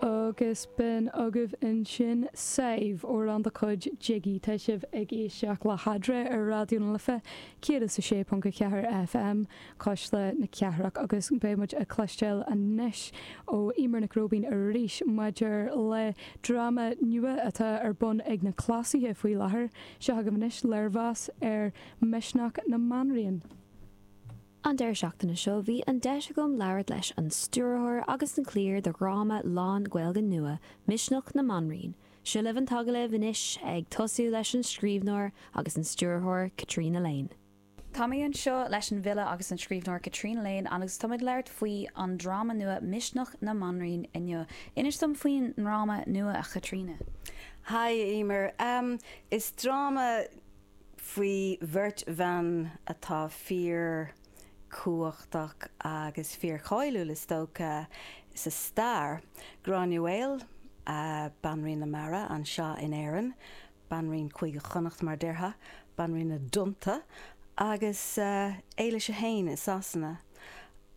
Agus b'in agaibh ansin Sadhbh amhrán de chuid Jiggy. Tá sibh ag éisteacht le hAndrea ar Raidió na Life 106.4 FM, Cuisle na Cathrach, agus beidh muid ag cloisteáil anois ó Eimear Nic Róibín arís maidir le dráma nua atá ar bun ag na Cleasaithe faoi láthair. Seo agaibh anois léirmheas ar Misneach na mBanríon. An deireadh seachtaine seo bhí an deis agam labhairt leis an stiúrthóir agus an chliar de dhráma lán-Ghaeilge nua, Misneach na mBanríon. Seo libh an t-agallamh anois, ag tosú leis an scríbhneoir agus an stiúrthóir, Caitríona Lane. Tá mé anseo leis an bhfile agus an scríbhneoir Caitríona Lane agus táimid ag labhairt faoi an dráma nua Misneach na mBanríon inniu. Inis dom faoin ndráma nua, a Chaitríona. Haigh, a Eimear. Is dráma faoi bheirt bhan atá fíor chumhachtach agus fíor cháiliúil is dócha sa stair, Gráinne Mhaol, Banríon na Mara anseo in Éirinn, Banríon Chúige Chonnacht mar a déarfá, Banríon na dTonnta, agus Éilis 1 i Sasana.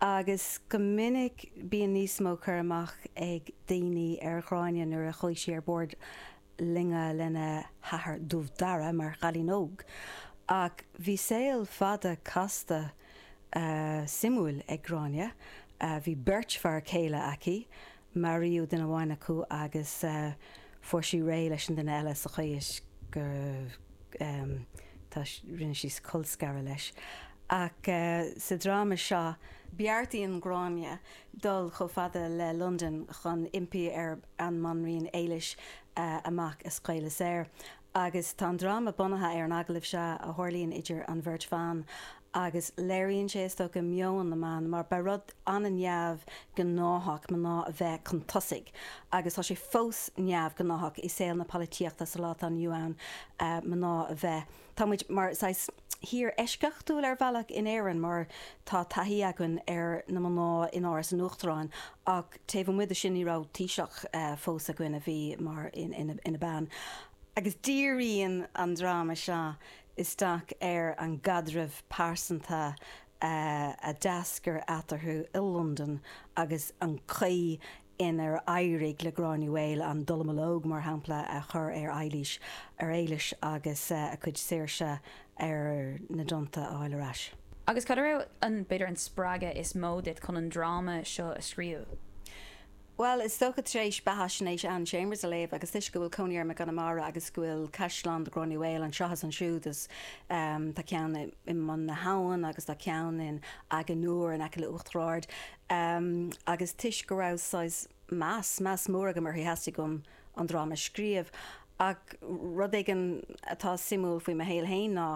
Agus go minic bíonn níos mó cur amach ag daoine ar Ghráinne nuair a chuaigh sí ar bord loinge lena hathair Dubh Dara mar chailín óg ach bhí saol fada casta suimiúil ag Gráinne. Bhí beirt fear céile aici, maraíodh duine amháin acu agus fuair sí réidh leis an duine eile sa chaoi is go rinne sí colscaradh leis ach sa dráma seo, beartaíonn Gráinne dul chomh fada le Londain chun impí ar an mBanríon Éilis a mac a scaoileadh saor. Agus tá an dráma bunaithe ar an agallamh seo a tharlaíonn idir an bheirt bhan agus léiríonn sé, is dócha, meon na mban mar ba rud an-neamh gnáthach mná a bheith chun tosaigh agus tá sé fós neamh gnáthach i saol na polaitíochta sa lá atá inniu ann mná a bheith Tá muid mar saghas thír eisceachtúil ar bhealach in Éirinn mar tá taithí againn ar na mná in Áras an Uachtaráin ach taobh amuigh de sin ní raibh Taoiseach fós againn a bhí mar ina bean. Agus díríonn an dráma seo isteach ar an gcaidreamh pearsanta a d'eascair eatarthu i Londain agus an chaoi inar éirigh le Gráinne Mhaol an dallamullóg, mar shampla, a chur ar Eilís, ar Éilis, agus a cuid saoirse ar na dtonnta a fháil ar ais. Agus cad a raibh an, b'fhéidir, an spreagadh is mó duit chun an dráma seo a scríobh? Bhuel, is dócha tar éis beathaisnéis Anne Chambers a léamh agus toisc go bhfuil cónaí orm i gConamara agus go bhfuil caisleán Ghráinne Mhaol anseo is ansiúd, is tá ceann i mBun na hAbhann agus tá ceann in Achadh na nIúr in aice le Uachtar Ard. Am, agus toisc go raibh saghas meas, meas mór agam uirthi, theastaigh uaim an dráma a scríobh. Ach rud éigin atá suimiúil faoi mo shaol féin ná,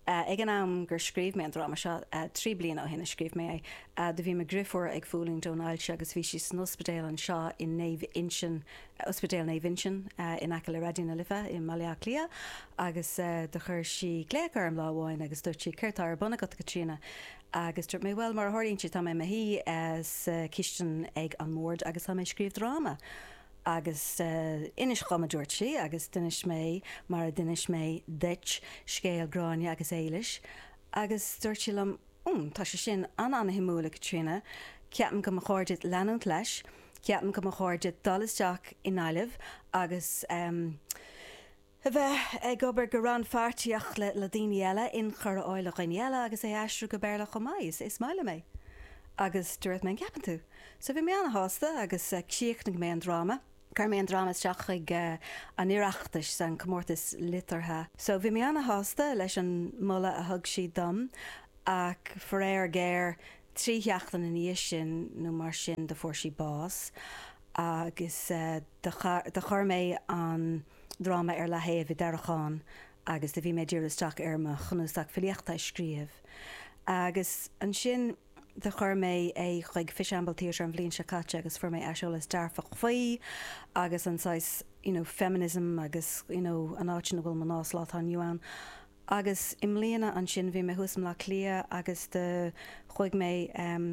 ag an am gur scríobh mé an dráma seo, trí bliana ó shin a scríobh mé é, do bhí mo dhriofúr ag fulaingt ón ailse agus bhí sí san ospidéal anseo i Naomh Uinseann, Ospidéal Naomh Uinseann in aice le Raidió na Life i mBaile Átha Cliath, agus do chuir sí glaoch orm lá amháin agus dúirt sí, 'Céard tá ar bun agat a Chaitríona? Agus dúirt mé, bhuel, mar a tharlaíonn sé, tá mé i mo shuí sa chistin ag an mbord agus tá mé ag scríobh dráma. Agus inis dhom, a dúirt sí, agus d'inis mé, mar a d'inis mé duit, scéal Gráinne agus Éilis. Agus dúirt sí liom, hmm, tá sé sin an-an-shuimiúil, a Chaitríona, ceapaim go mba chóir duit leanúint leis, ceapaim go mba chóir duit dul isteach i nGaillimh agus, em, A bheith ag obair go rannpháirtíoch le daoine eile, inchur a fháil ó dhaoine eile agus é a aistriú go Béarla chomh maith. Is maith liom é. Agus dúirt mé, an gceapann tú? So bhí mé an-shásta agus chríochnaigh mé an dráma, chuir mé an dráma isteach chuig an Oireachtas, an comórtas liteartha. So bhí mé an-shásta leis an moladh a thug siad dom ach faraor géar, trí sheachtain ina dhiaidh sin nó mar sin do fuair sí bás agus do chuir mé an dráma ar leathaobh i dtarraiceán agus do bhí mé ag díriú isteach ar mo chnuasach filíochta a scríobh agus ansin do chuir mé é chuig Fishamble Theatre an bhliain seo caite agus fuair mé aiseolas dearfach faoi agus an saghas you know feminism agus you know an áit ina bhfuil mná sa lá atá inniu ann. Agus i mbliana ansin bhí mé thuas i mBleá Cliath agus do chuaigh mé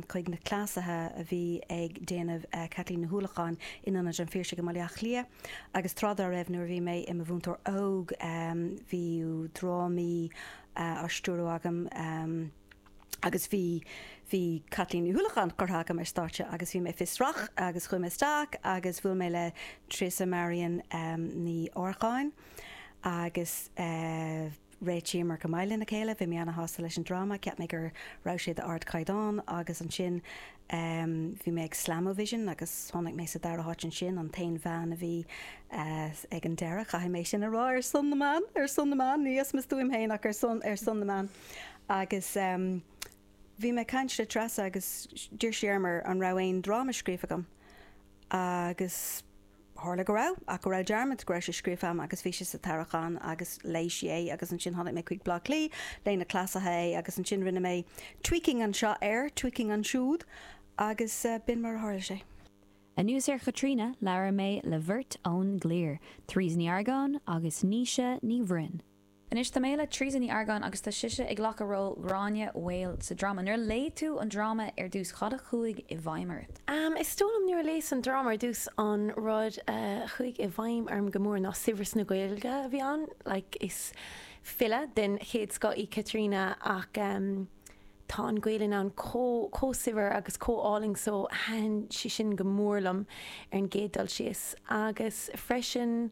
chuig na cleasaithe a bhí ag déanamh Caitlín Ní hUallacháin in Ionad an Phiarsaigh i mBaile Átha Cliath. Agus tráth dá raibh nuair a bhí mé i mo mhúinteoir óg bhí drámaí á stiúradh agam agus bhí bhí Caitlín Ní hUallacháin curtha agam ar stáitse agus bhí mé fiosrach agus chuaigh mé isteach agus bhuail mé le Treasa Marian Ní Earcáin. agus réitíomar go maith lena chéile. Bhí mé ana-shásta leis an dráma, cheap mé go raibh sé d'ardchaighdeán agus ansin bhí mé ag Slam-O-Vision agus tháinig mé sa dara háit ansin, an t-aon bhean a bhí ag an deireadh, caithfidh mé sin a rá, ar son na mban, ar son na mban, ní as mo stuaim féin ach ar son, ar son na mban. Agus bhí mé ag caint le Treasa agus d'iarr sí orm an raibh aon dráma scríofa agam agus. Tharla go raibh, ach go raibh dearmad, go raibh sé scríofa agam agus bhí sé sa tarraiceán agus léigh sí é agus ansin tháinig mé chuig Bleá Cliath, léigh na cleasaithe é agus ansin rinne mé tweaking anseo air, tweaking ansiúd agus b'in mar a tharla sé. Anuas ar Chaitríona, labhair mé le beirt ón gcliar, Therese Ní Argáin agus Naoise Ní Bhroin. Anois tá mé le Teresa Ní Argáin agus tá sise ag glacadh ról Ghráinne Mhaol sa dráma. Nuair a léigh tú an dráma ar dtús, cad a chuaigh i bhfeidhm ort? Is dóigh liom nuair a léas an dráma ar dtús, an rud a chuaigh i bhfeidhm orm go mór ná saibhreas na Gaeilge a bhí ann. Like, is file den chéad scoth í Caitríona ach tá an Ghaelainn ann chomh, chomh saibhir agus chomh álainn so thaitin sé sin go mór liom ar an gcéad dul síos agus freisin,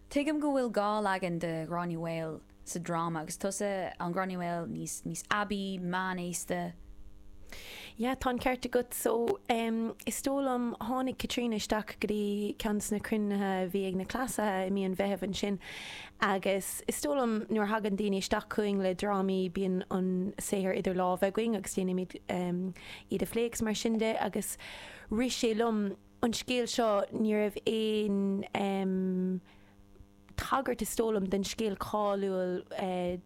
Tuigim go bhfuil dhá leagan de Ghráinne Mhaol sa dráma, agus tusa an Ghráinne Mhaol níos, níos aibí, meánaosta. Yeah, tá an ceart agat. So, em, is dóigh liom, tháinig Caitríona isteach go dtí ceann de na cruinnithe a bhí ag na Cleasaithe i mí an Mheithimh ansin agus is dóigh liom nuair a thagann daoine isteach chugainn le drámaí bíonn an saothar idir lámha againn agus déanaimid, em, iad a phlé agus mar sin de agus rith sé liom an scéal seo, ní raibh aon tagairt, is dóigh liom, don scéal cáiliúil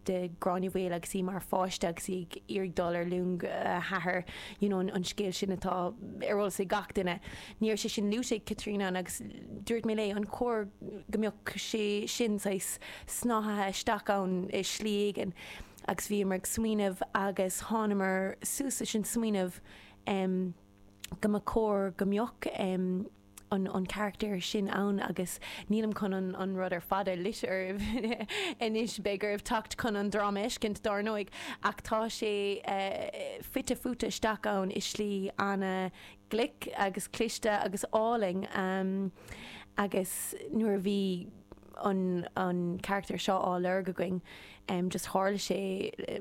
de Ghráinne Mhaol agus í mar pháiste agus í ag iarraidh dul ar luing a hathar, you know an scéal sin atá ar eolas ag gach duine. Ní raibh sé sin luaite ag Caitríona agus dúirt mé léi, an chóir go mbeadh sé sin saghas snáthaithe isteach ann i slí éigin? Agus bhíomar ag smaoineamh agus thánamar suas leis an smaoineamh, go mba chóir go mbeadh an carachtar sin ann agus nílim chun an rud ar fad a loit oraibh anois, beidh oraibh teacht chun an dráma a fheiscint dár ndóigh, ach tá sé fite fuaite isteach ann i slí ana-ghlic agus cliste agus álainn agus nuair a bhí an carachtar seo á lorg againn just tharla sé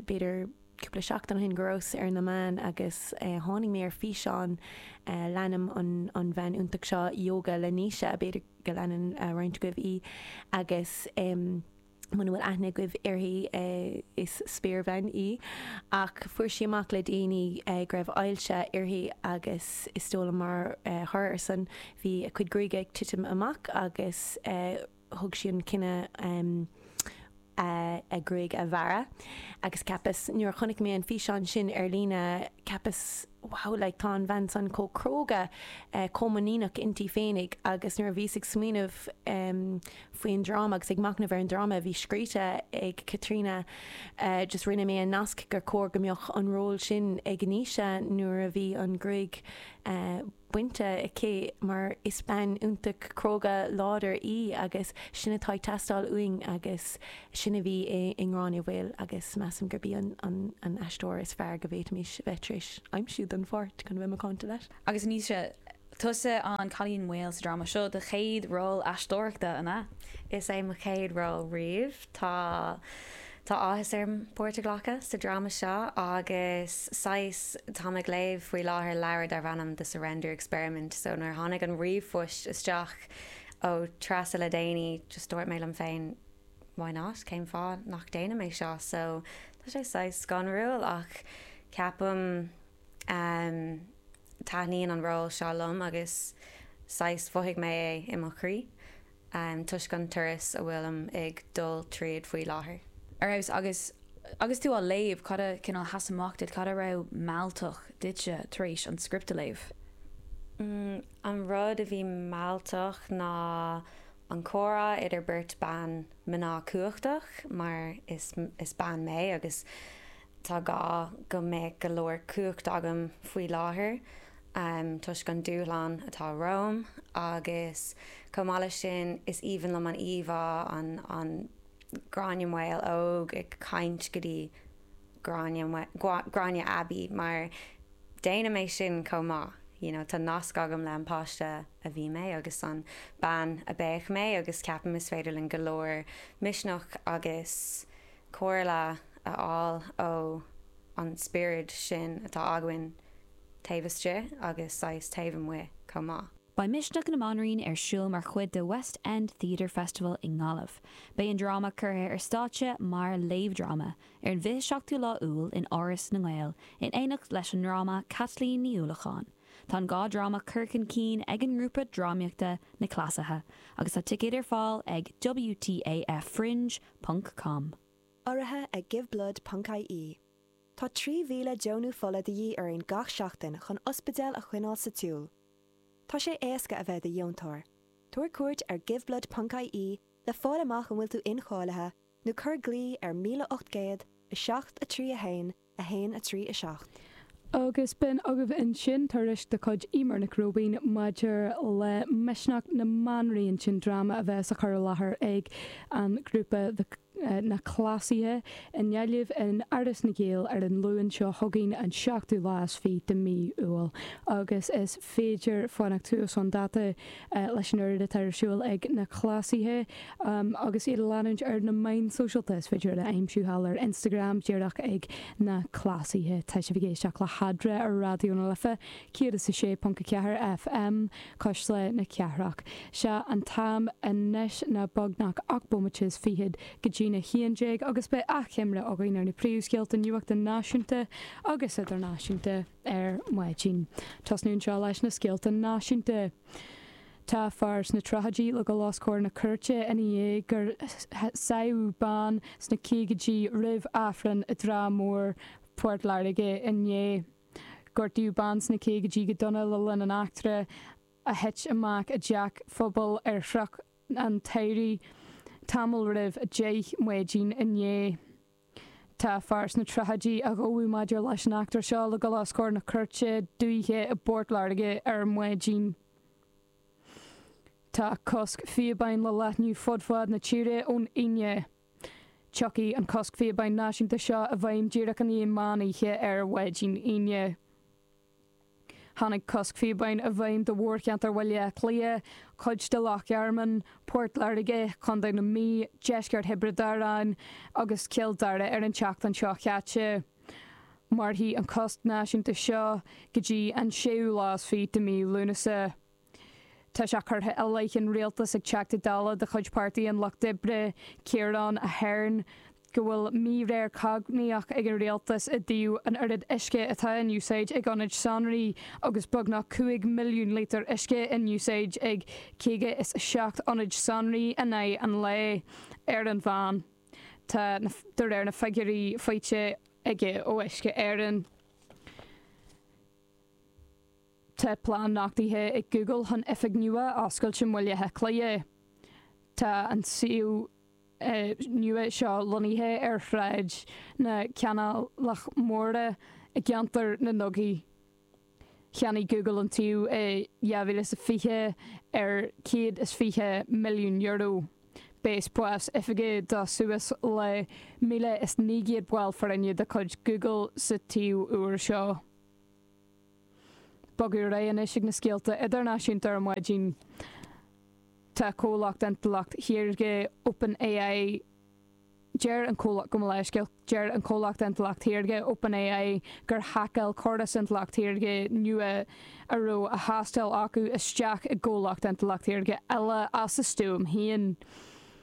b'fhéidir, cúpla seachtain ó shin go rabhas ar na meáin agus tháinig mé ar fhíseán, leanaim an bhean iontach seo, Ióga le Naoise, b'fhéidir go leanann roinnt agaibh í, agus muna bhfuil aithne agaibh uirthi, is spéirbhean í, ach fuair sí amach le déanaí go raibh ailse uirthi agus is dóigh liom mar thoradh ar san bhí a cuid gruaige ag titim amach agus, thug sí an cinneadh a gruaig a bhearradh agus cheapas nuair a chonaic mé an físeán sin ar líne cheapas wow like tá an bhean san chomh cróga chomh muiníneach inti féinig agus nuair a bhíos ag smaoineamh faoin dráma agus ag machnamh ar an dráma a bhí scríte ag Caitríona just rinne mé an nasc gur chóir go mbeadh an ról sin ag Naoise nuair a bhí an ghruaig bainte aici mar is bean iontach cróga láidir í agus sin atá ag teastáil uainn agus sin a bhí i nGráinne Mhaol agus measaim gurb í an aisteoir is fearr go bhféadfaimis bheith tar éis aimsiú don pháirt, chun a bheith macánta leat. Agus ní tusa an cailín maol sa dráma seo, do chéad ról aisteoireachta, an ea? Is é mo chéad ról riamh. Tá Tá áthas orm páirt a ghlacadh sa dráma seo agus saghas, táim ag léamh faoi láthair leabhar darb ainm The Surrender Experiment so nuair a tháinig an ríomhphoist isteach ó Treasa le déanaí just dúirt mé liom féin why not, cén fáth nach déanaim é seo so tá sé saghas scanrúil ach ceapaim ehm taitníonn an ról seo liom agus saghas mhothaigh mé é i mo chroí. toisc an turas a bhfuilim ag dul tríd faoi láthair. Ar fheabhas! Agus agus tú á léamh, cad a cineál a sheas amach duit, cad a raibh mealltach duitse tar éis an script a léamh? An rud a bhí mealltach ná an comhrá idir beirt bean mná cumhachtach, mar is bean mé, agus Tá gá go mbeadh go leor cumhacht agam faoi láthair toisc an dúshlán atá romham agus chomh maith leis sin is aoibhinn liom an íomhá an Gráinne Mhaol óg ag caint go dtí Gráinne aibí mar déanaim é sin chomh maith you know tá nasc agam le an páiste a bhí mé agus an bean a bheadh mé agus ceapaim is féidir linn go leor misneach agus comhairle a fháil ó an spiorad sin atá againn taobh istigh agus saghas taobh amuigh chomh maith. Beidh Misneach na mBanríon ar siúl mar chuid de West End Theatre Festival i nGaillimh. Beidh an dráma curtha ar stáitse mar léamhdhráma ar an bhfiche seachtú lá Iúil in Áras na nGael in éineacht leis an ndráma Caitlín Ní Uallacháin. Tá an dhá dráma curtha chun cinn ag an ngrúpa drámaíochta Na Cleasaithe agus tá ticéid ar fáil ag WTAF Fringe, ponc com. Urraithe ag Giveblood ponc ie, tá 3,000 deonú fola de dhíth orainn gach seachtain chun ospidéal a choinneáil sa tsiúl. Tá sé éasca a bheith i do dheontóir, tabhair cuairt ar Giveblood ponc ie le fáil amach an bhfuil tú incháilithe nó cuir glao ar 1800 7 3 1 1, 3, 7. Agus b'in agaibh ansin tuairisc de chuid Emer Nic Róibín maidir le Misneach na mBanríon sin dráma a bheas a chur i láthair ag an ghrúpa Na Cleasaithe i nGaillimh in Áras na nGael ar an Luan seo chugainn, an 7ú lá is 20 de Mí Iúil. Agus is féidir fanacht suas chun dáta leis an oiread atá ar siúl ag na cleasaithe agus iad a leanúint ar na meáin sóisialta. Is féidir iad a aimsiú thall ar Instagram díreach ag Na Cleasaithe. Tá sibh ag éisteacht le hEadra ar Raidió na Life 106.4 FM Cuisle na Cathrach. Sé an t-am anois ná beagnach ocht bomaite is fichead go dtí'n a haon déag agus beidh achoimre againn ar na príomhscéalta nuachta náisiúnta agus idirnáisiúnta. ar maidin. Tosnú anseo leis na scéalta náisiúnta. Tá fear sna tríochaidí le dul os comhair na cúirte i ndiaidh gur sádh bean sna caogaidí roimh Aifreann i dTrá Mhór, Port Láirge, inné. Gortaíodh bean sna caogaidí go dona le linn an eachtra a thit amach i dteach phobail ar Chnoc an tSamhraidh tamall roimh deich maidin inné. Tá fear sna tríochaidí a ghabhadh maidir leis an eachtra seo le dul os comhair na cúirte dúiche i bPort Láirge ar maidin. Tá cosc phíobáin le leathnú fud fad na tíre ón Aoine. Tiocfaidh an cosc phíobáin náisiúnta seo i bhfeidhm díreach i ndiaidh meán oíche ar mhaidin Aoine. Tháinig cosc phíobáin i bhfeidhm do mhórcheantar Bhaile Átha Cliath, cuid de Loch Garman, Port Láirge, Co. na Mí, deisceart Thiobraid Árann agus Cill Dara ar an tseachtain seo caite. Mairfidh an cosc náisiúnta seo go dtí an séú lá is fiche de mhí Lúnasa. Tá sé curtha i leith an Rialtais ag Teachta Dála de chuid Páirtí an Lucht Oibre, Ciarán Ahern, go bhfuil míréir chognaíoch ag an Rialtas i dtaobh an oiread uisce atá in úsáid ag ionaid sonraí agus beagnach 5 milliún lítear uisce in úsáid ag 57 ionad sonraí in aghaidh an lae ar an mheán, de réir na figiúirí faighte aige ó Uisce Éireann. Tá plean nochtaithe ag Google chun oifig nua a oscailt i mBaile Átha Cliath. Tá an suíomh nua seo lonnaithe ar Shráid na Canálach Móire i gceantar na ndugaí. Cheannaigh Google an tsuíomh i 2020 ar €120 milliún, beidh spás oifige do suas le 1,900 ball foirne de chuid Google sa tsuíomh úr seo. Bogadh ar aghaidh anois ag na scéalta idirnáisiúnta ar maidin. Tá comhlacht intleacht shaorga OpenAI Deir an comhlacht gabh mo leithscéal Deir an comhlacht intleacht shaorga OpenAI gur haiceáil córas intleacht shaorga nua a raibh á thástáil acu isteach i gcomhlacht intleacht shaorga eile as a stuaim féin.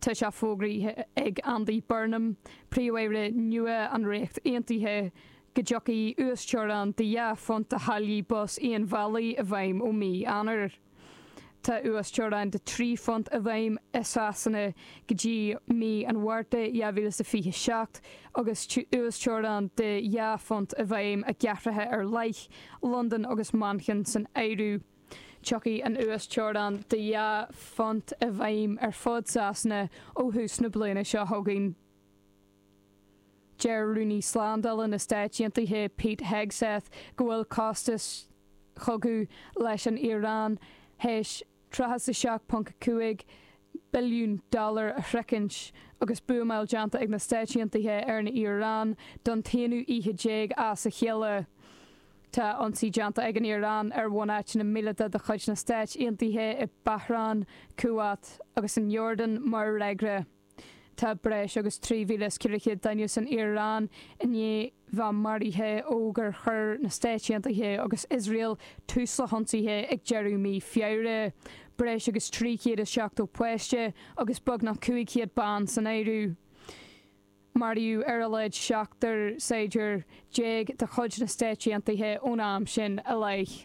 Tá sé fógraithe ag Andy Burnham, Príomh-Aire nua an Ríocht Aontaithe, go dtiocfaidh uasteorainn de dhá phunt do tháillí bus aon bhealaigh i bhfeidhm ó mhí Eanáir. Tá uasteorainn de trí phunt i bhfeidhm i Sasana go dtí mí an Mhárta 2027 agus uasteorainn de dhá phunt i bhfeidhm i gcathracha ar leith, Londain agus Manchain san áireamh. Tiocfaidh an uasteorainn de dhá phunt i bhfeidhm ar fud Sasana ó thús na bliana seo chugainn. Deir Rúnaí Slándála na Stáit Aontaithe Pete Hegseth go bhfuil costas cogadh leis an Iaráin théis 37.5 billiún dollar a shroichint agus buamáil déanta ag na Stáit Aontaithe ar an Iaráin don t-aonú oíche déag as a chéile. Tá ionsaí déanta ag an Iaráin ar bhunáiteanna míleata de chuid na Stáit Aontaithe i Bahrain, Kuwait agus in Iordan mar fhreagra. Tá breis agus 3,400 duine san Iaráin i ndiaidh bheith maraithe ó gur chuir na Stáit Aontaithe agus Iosrael tús le hionsaithe ag deireadh mhí Feabhra, breis agus 370 páiste agus beagnach 500 bean san áireamh. Maraíodh ar a laghad seachtar saighdiúir déag de chuid na Stáit Aontaithe ón am sin i leith.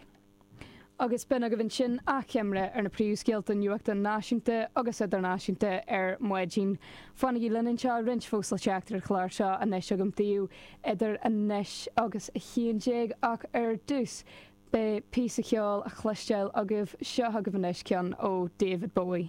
Agus b'in agaibh ansin achoimre ar na príomhscéalta nuachta náisiúnta agus idirnáisiúnta ar maidin. Fanaigí linn anseo roinnt fós le teacht ar an chlár seo anois agam daoibh idir anois agus a haon déag ach ar dtús beidh píosa ceoil le cloisteáil agaibh. Seo agaibh anois ceann ó David Bowie.